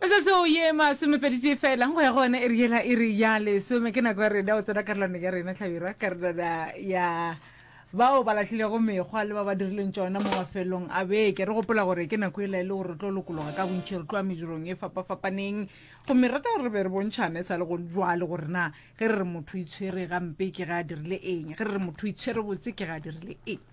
metsotso ye masomepeditee fela go ya go one e re yela e re ya lesome ke nako ya rena o tsena karolwane ya rena tlhabirwa karolwana ya bao ba latlhilego mekgwa le ba ba dirileng tsona mo mafelong a beke re gopola gore ke nako e la e le gore re tlo lokologa ka bontšhi re tloa medirong e fapafapaneng gomme rata gore re be re bontšhane e sa le go jwale gore na ge re re motho itshwere gampe ke ga a dirile eng ge re re motho itshwere botse ke ga a dirile eng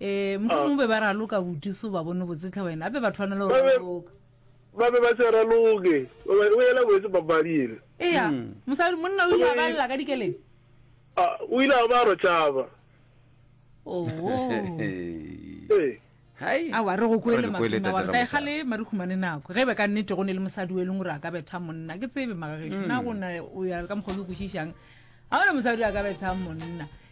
Eh, mohlomong be ba raloka buti so ba bone botsetlha wena ape ba thwanela go raloka ba be ba se raloke o ela boetse papadi ele ea hmm. mosadi monna o ile a balela ka dikeleng o ile a ba ro tšaba oh. ee. awa re go koele maina wa re ka egale ma re humane nako ge e be ka nnete go ne le mosadi o e leng gore a ka betha monna ke tsebe magageso na hmm. gona o ya ka mokgwa o ke kwešišang ga gona mosadi a ka betha monna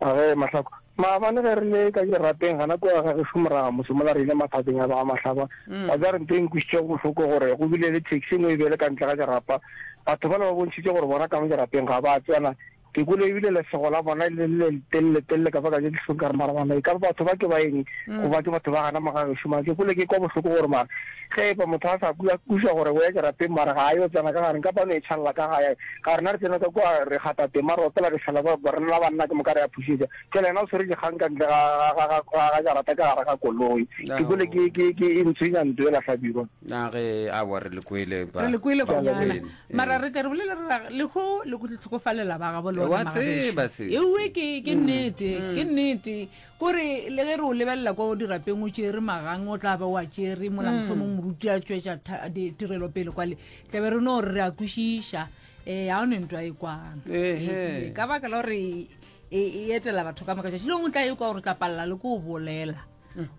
A ge, Mahlakwa. Maabane ge re le ka dirapeng, gana kua ga gešo moraga motse mola re ile maphateng a ba Mahlakwa. Wa tseba re ntho e nkwišitšego bohloko gore go bile le taxi engwe e bele ka ntle ga dirapa. Batho bale ba bontšhitše gore bona ka mo dirapeng ga ba tsena. Ke kwele e bile lesego la bona e le le letelele-telele ka bakanya dihlong ka re mara bana e ka ba batho ba ke ba eng goba ke batho ba gana mo ga gešo. Mara ke kwele ke kwa bohloko gore mara Ge e ba motho a sa kwe, a kwešiwa gore o ya kerateng mara ga a yo tsena ka gare, nka ba no e tšhalela ka gae. Ka rena re tsena ka kua, re gata tema, re opela, re hlala kua, rena la banna ke moka re a phušetša. Tšela yena o swere dikgang ka ntle ga, ga, ga, ga, ga, ga jarata ka gare ga koloi. Ke kwele ke, ke, ke e ntshwenya ntlo yela Hlabirwa. Na ge, aowa, re le kwele ba. Re le kwele Ke a kwanana. leboga. Ee. Mara re tle re bolele re ra, Lekgo le kutlo tlhokofalela ba gabo le Wa ona tseba magagešu. se, Eue se. ke, ke nnete, ke nnete. O re, Le ge re o lebelela kwa dirapeng o tšere magang, o tla ba o a tšere mola mohlomong moruti a tšwetša tha- di- tirelo pele kwale tla be re no re re a kwešiša um ga o ne ntwa e kwang Ehe. Ee, ka baka la gore e e etela batho ka moka tšatši lengwe o tla e kwa gore o tla palela le ko o bolela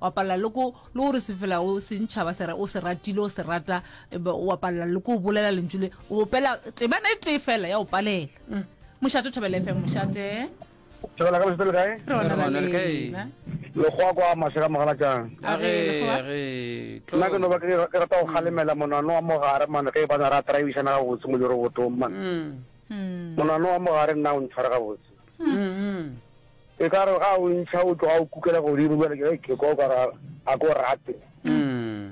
wa palela le ko le gore se fela o sentšhaba se ra- o se ratile o se rata e be wa palela le ko o bolela lentšu le o opela temana e tee fela ya o palela mošate o thabela fm mošate Thabela ka lesete le kae? Rona ra Rona le kae? lena. Lekgowa kwa mashe ka mogalatšang. A ge, Lekgowa. a ge, tlo. Nna ke no ba ke ke rata go kgalemela monano wa mogare man ge e bana ra traibišana gabotse mo lerobotong man. Mm, Mm. Monano wa mogare nna o ntshware gabotse. mm, mm. E ka re ga o ntšha o tloga o kukela godimo bjale ke ge ke kwa o ka ra a ko rate. Mm.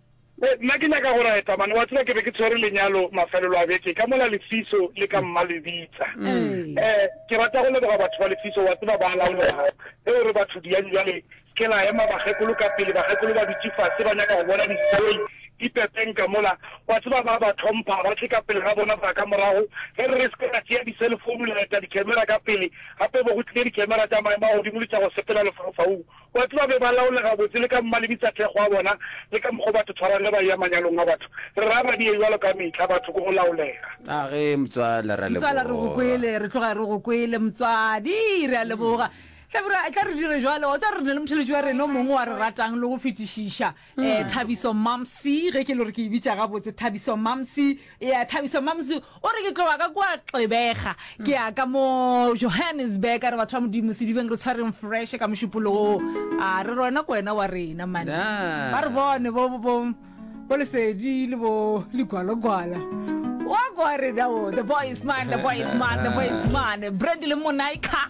Be, nna ke nyaka go reta, mane, wa tseba, ke be ke tshwere lenyalo mafelelo a beke, ka mola Lefiso le ka mma le bitsa. E, ke rata go leboga batho ba Lefiso, wa tseba, ba a laolega. Eo re batho diang bjale, ke la ema, bakgekolo ka pele, bakgekolo ba dutše fase, ba nyaka go bona dipoi, dipepeng ka mola, wa tseba, ba a ba tlhompha, ba tle ka pele ga bona, ba ka morago, ge re re se ke ra tšea diselefounu le reta dikemera ka pele, gape bo go tlile dikemera tša maemo a godimo le tša go sepela lefaufaung, Batho ba be ba laole gabotse le ka mmalebe tsa thekgo a bona le ka mokgwa o batho tshwarang ge ba eya manyalong a batho. Re ra ba die jwalo ka mehla, batho ko go laolega. A ge motswala ra leboga. Motswala re go kwele, re tloga re go kwele motswadi, re a leboga. Hlabirwa, etla re dire jwalo, wa tseba re na le motheletši wa rena o mongwe wa re ratang le go fetišiša. Eh, mm. thabiso mamsi ge ke le gore ke e bitša gabotse thabiso mamsi ya thabiso mamsi o re ke tloga ka kwa xebega ke ya ka mo johannesburg a re batho ba modimo sedibeng re tshwareng fresh ka mošupoloo a re rona ko wena wa rena mane ba re bone bo lesedi le bo legwalogwala wa kwa rena o the boy is man the boy is man the boy is man brand le monaika